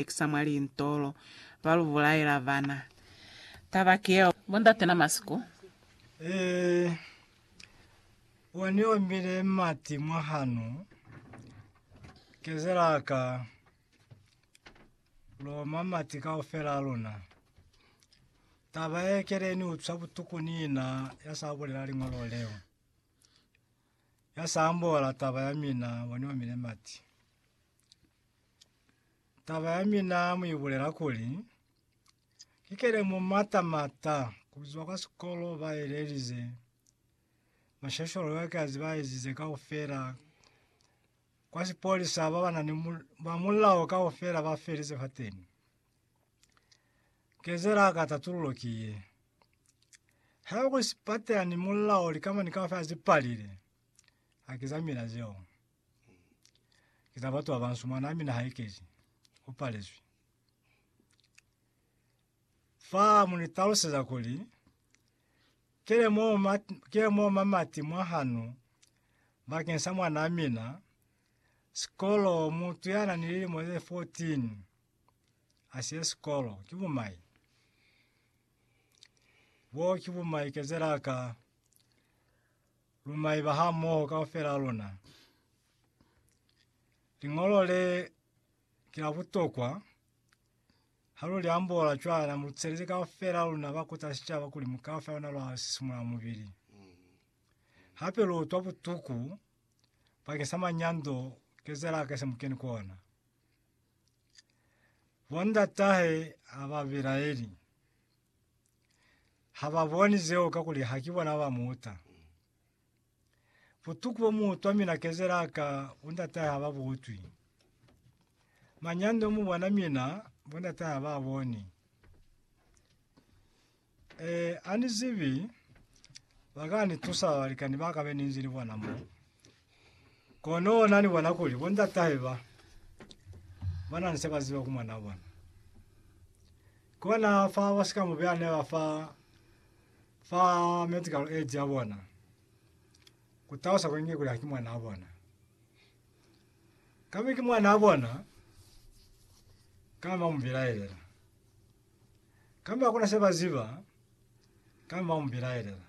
lukisa mwa lintolo, ba lu bulaela bana. Taba ki yeo. Bo ndate na masiku. Ee, wa ni ombile mati mwa hanu, kezela ka loma mati kaufela a luna. Taba ye kele ni utswa butuku ni ina ya sa bulela liñolo leo, ya sa ambola taba ya mina, wa ni omile mati. Taba ya mina mu ibulela kuli, ikele mu mata mata kuzwa kwa sikolo ba elelize mashasholo ya kazi ba ezize kaufela. Kwa sipolisa ba bana ni mul- ba mulao kaufela ba felize fa teni. Kezela ka tatululo ki ye, ha ku sipata ni mulao likama ni kaufela zi palile, hakiza mina zeo. Ki za batu babansu mwanaa mina haikezi, upalezwi. Fa munitaluseza kuli, kile mo ma kile mo mamati mwahanu bakeng sa mwanaa mina, sikolo mutu yana ni lilimo ze 14 asiye sikolo ki bumai. Boo ki bumai kezelaka. Lu maiba hamoho kaufela a luna. Liñolo le ki la butokwa. Ha lu li ambola cwana, mu lucelezi kaufela a luna ba kuta sicaba kuli mukaba fa lona lwa sisimula mubili. Hape lu utwa butuku bakeng sa manyando kezela a kese mu keni ku ona. Bondatahe ha ba belaeli. ha ba boni zeo kakuli ha ki bona ba mu uta. Butuku bo mu utwa mina kezela ka bo ndatahe ha ba bu utwi. Manyando mu bona mina bo ndatahe ha ba a boni. E, ani zibi ba ka ni tusa balikani ba ka be ni nzi ni bona mo. Kono na ni bona kuli bo ndatahe ba ba na ni se ba ziba ku mwanaa bona. Kona fa ba si ka mu beha neba fa fa medical aid ya bona ku talusa kuli nge kuli haki mwanaa bona. Ka be ki mwanaa bona ka ba mu belaelela kamba ku na se ba ziba ka ba mu belaelela.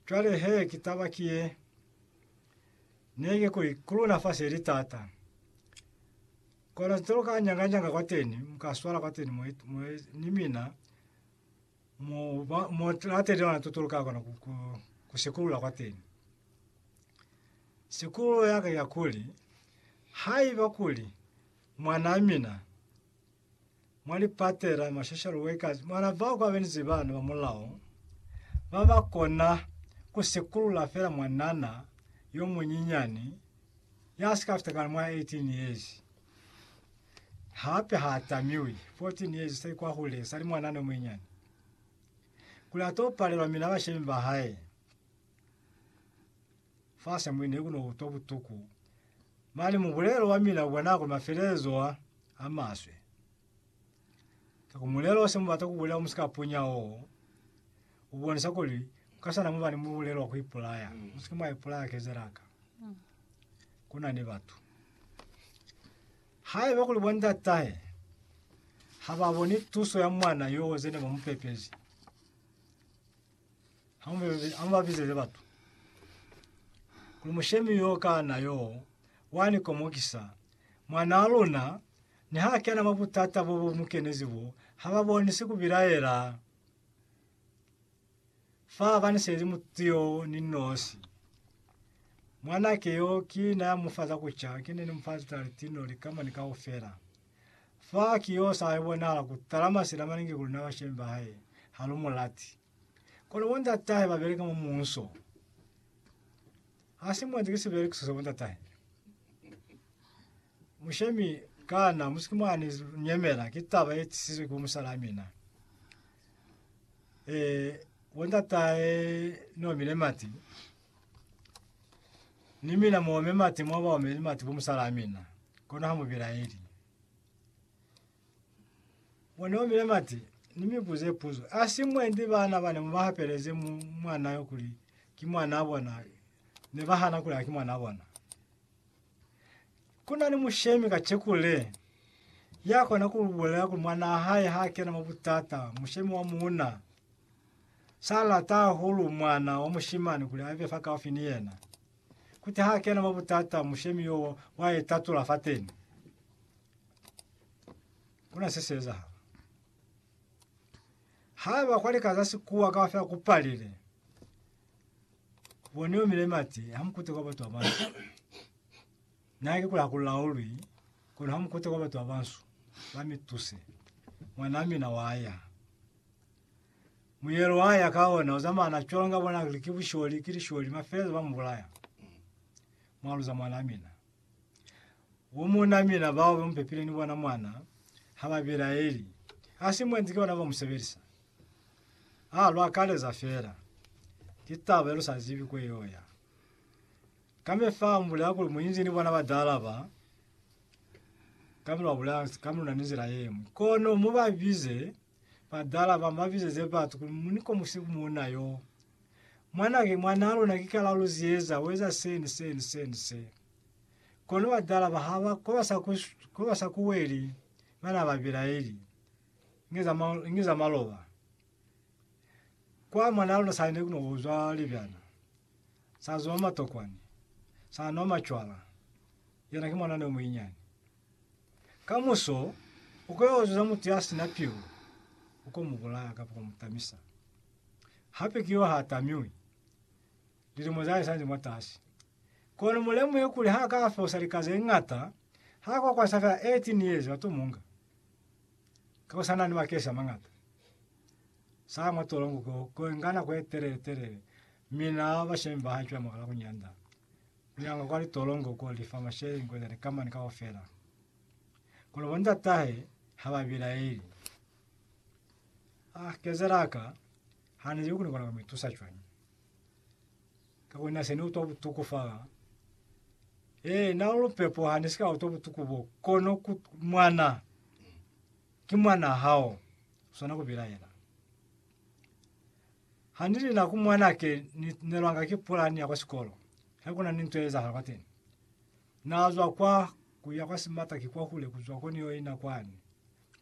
Cwale he ki taba ki ye, ne ki kuli, ku luna fa se li tata. Kona nte lu ka nyanganyanga kwateni, mu ka swala kwateni mo, mo ni mina, mo, ba, mo lateli lona tuto lu ka kona ku, ku, ku sikulula kwateni. Sikululo yaka ya kuli, haiba kuli mwana mina Mwa lipate la ma social workers mwana bao kwa benzi bana ba mulao ba ba kona ku sikulula fela mwanana yo munyinyani ya si ka fita kana mwa 18 years. Hape ha tamiwi 14 years se kwa hule sa li mwanana yo munyinyani kuli a to palelwa mina bashemi ba hae. Fa Samuel ne ku no utwa butuku, mane mubulelo wa mina u bona kuli mafelelezo a a maswe. Ka ku mulelo wa se mu bata ku bulela wa musikapunya wo, u bonisa kuli u ka sa na mu ba ni mubulelo wa ku ipulaya. Mu si ke mwa ipulaya kezela ka ku na ni batu. Haiba kuli bo ndatahe ha ba boni tuso ya mwana yo ze ne ba mu pepezi, Hamubezezi, hamubabizeze batu kuli mushemi yo kana yo wani komokisa mwana wa luna niha kena mwa butata bo bo mukenezi bo haba bonisi kubilaela fa abanisezi mutu yo ni nosi. Mwanake yo ki na ya mufa za kuca, ki ne ni mufa litali tino likama ni kaufela. Fa ki yo sa yo bonahala ku tala masila maningi ku luna bashemi ba hae, ha lu mu lati. Kono bo ndatahe ba beleka mwa muuso. Ha si mwanzi ki sibelekiso sa bo ndatahe. Mushemi, Kana mu si ke mwa ni nyemela ki taba ye tisizwe ki bo musalaa mina? Ee, bo ndatahe Nomi le Mati Ni mina mu ome mati mwa baomeli mati bo musalaa mina, kono ha mu bilaeli. Mwa ni omile mati, ni mi buze puzo. A si mwendi bana bane mu ba hapeleze mu mwana yo kuli ki mwana bona, ne ba hana kuli ha ki mwana bona. Kuna ni mushemi ka chekule ya kona ku bulela kuli mwana hae ha kena mwa butata, mushemi wa muuna. Sa lata hahulu mwana wa mushimani kuli abe fakaufi ni yena. Kuti ha kena mwa butata, mushemi yo wa itatula fateni. Kuna se se ezahala. Haiba kwa lika za sikuwa kaufela kupalile, boni omile mati, hamukute kwa batu abansu. Nake kula hakulaulwi, kono hamukute kwa batu abansu, bamituse. Mwana mina waya. Muyelo wa ya ka ona uzamana cwalo nga bona kuli ki busholi, ki lisholi, mafeleza ba mubulaya. Mwaluza mwana mina. Bu muuna mina bao ba mupepile ni bona mwana ha ba bilaeli. Hasi mwenzi ki bona ba musebelisa. A lu akaleza fela. Ki taba ye lu sa zibi kwe yo ya. Kambe fa mu bulela kuli muinzi ni bona ba dala ba, kambe lwa bulela, kambe luna ni nzila yengwe. Kono mu ba bize Badala ba mu abizeze batu kuli, Mu ni komuse ku muuna yo. Mwana ki mwana a luna ki ka la lu ziyeza, u eza se ni se ni se ni se. Kono badala ba ha ba ko ba sa ku, ko ba sa ku weli, ba na ba bilaeli. Inge za, inge za maloba. Kwa mwana a luna sa ne ku no uzwa libyana, sa zwa matokwani, sa nwa macwala, yena ki mwana ne o muinyani. Kamuso ukoyoozuza mutu yasina pilu, ukomubulaya kamba kumutamisa. Hape ki yo haatamiwi, lilimo zahae sali mwatasi. Kono mulemuhe kuli hakafosa lika zeñata, hakokwanisa feela 18 years bato munga. Ka ku sanani makesi amañata, saa mwa tolongo ko, koenga nako yetelele-telele, mi naa bashemi bahae cwale mwakala kunyanda. Kunyanga kwa litolongo ko li fa mashele inkwezani ka mani kaufela. Kono bo ndatahe ha ba bilaeli. Ah, kezela ka, ha ni li ku ni kona ku mi tusa cwañi. Kakuli na se ni utwa butuku fala. Ee, na lu lupepo ha ni si ka utwa butuku bo, kono ku, mwana, ki mwana hao, swana ku bilaela. Hanilina ku mwanake ni nelwanga ki pulani ya kwa sikolo he kuna ni nto ye ezahala kwateni. Na zwa kwa kuya kwa simata ki kwahule kuzwa ko ni yo ina kwani.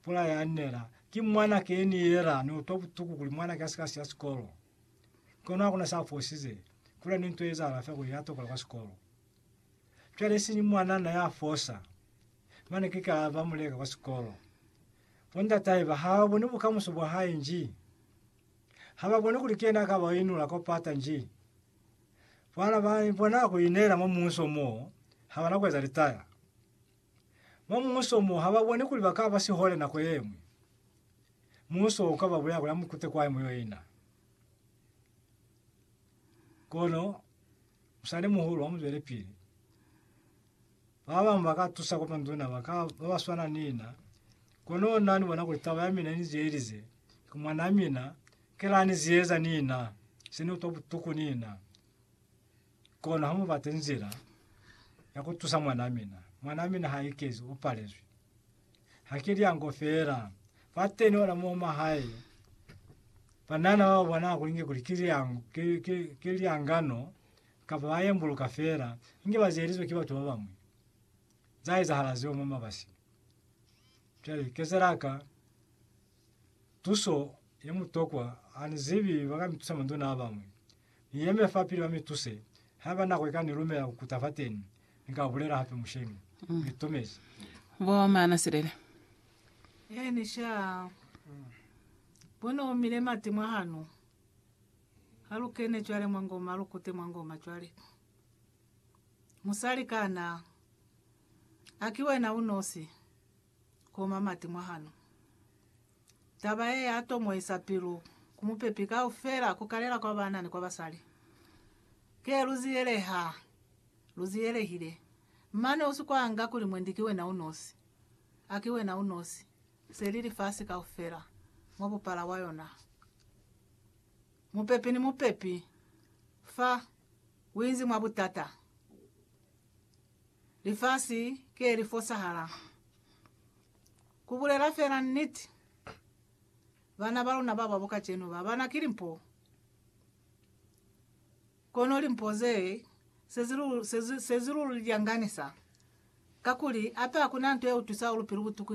Pula ya nela, ki mwanake ye ni yela ni utwa butuku kuli mwanake asika siya sikolo. Kono hakuna sa fosize, kuna ni nto ye ezahala fela kuli ya tokola kwa sikolo. Cwale isiñi mwanana ya fosa, mane ki ka ba muleka kwa sikolo. Bo ndatahe ba ha boni bukamuso bwa hae nji ha ba boni kuli kiyena a ka ba inula kwa pata nji. Bana ba bona ku ineela mwa muuso mo ha ba na ku eza litaya. Mwa muuso mo ha ba boni kuli ba ka ba sihole nako ye ñwi. Muuso u ka ba bulaya kuli ha mu kute kwai mu yo ina. Kono musalimuhulu ha mu zwelepili. Babamwi ba ka tusa kwa manduna ba ka ba ba swana ni na. Kono na ni bona kuli taba ya mina ni zeelize, ki mwanaa mina, ki la ni zieza ni na, se ni utwa butuku ni na. Kono ha mu bate nzila ya ku tusa mwanaa mina. Mwanaa mina ha ikezi, u palezwi. Ha ki lyango feela. Fateni ona mo mwa hae, banana ba bona kulinge kuli ki lyango, ki, ki, ki lyangano Kapa ba yembuluka feela inge ba zielizwe ki batu ba bañwi. Za ezahala zeo mwa mabasi. Cwale, kezela ka tuso ye mutokwa, ha ni zibi ba ka mi tusa manduna a bañwi. Ni yeme fapili ba mi tuse, haiba nako i ka ni lumela ku kuta fateni, ni ka bulela hape musheñi. Ni tomezi. Bo Maana Silele. Eeni, sha. Bo ne omile mati mwa hano. Ha lu kene cwale mwa ngoma, lu kute mwa ngoma cwale. Musali kana? A ki wena unosi? Ko mamati mwa hano. Taba ye ya tomoisa pilu ku mupepi kaufela, ku kalela kwa bana ni kwa basali. Ke lu ziyeleha, lu ziyelehile. Mane u si kwanga kuli, Mwendi, ki wena unosi. A ki wena unosi. Se li lifasi kaufela, mwa bupala bwa yona. Mupepi ni mupepi fa uinzi mwa butata. Lifasi ke li fosahala. Ku bulela fela niti, bana ba luna ba babo kacenu ba bana ki limpo. Kono limpo ze se zilululi lya nganisa, kakuli hape hakuna nto ye utwisa ulupilu butuku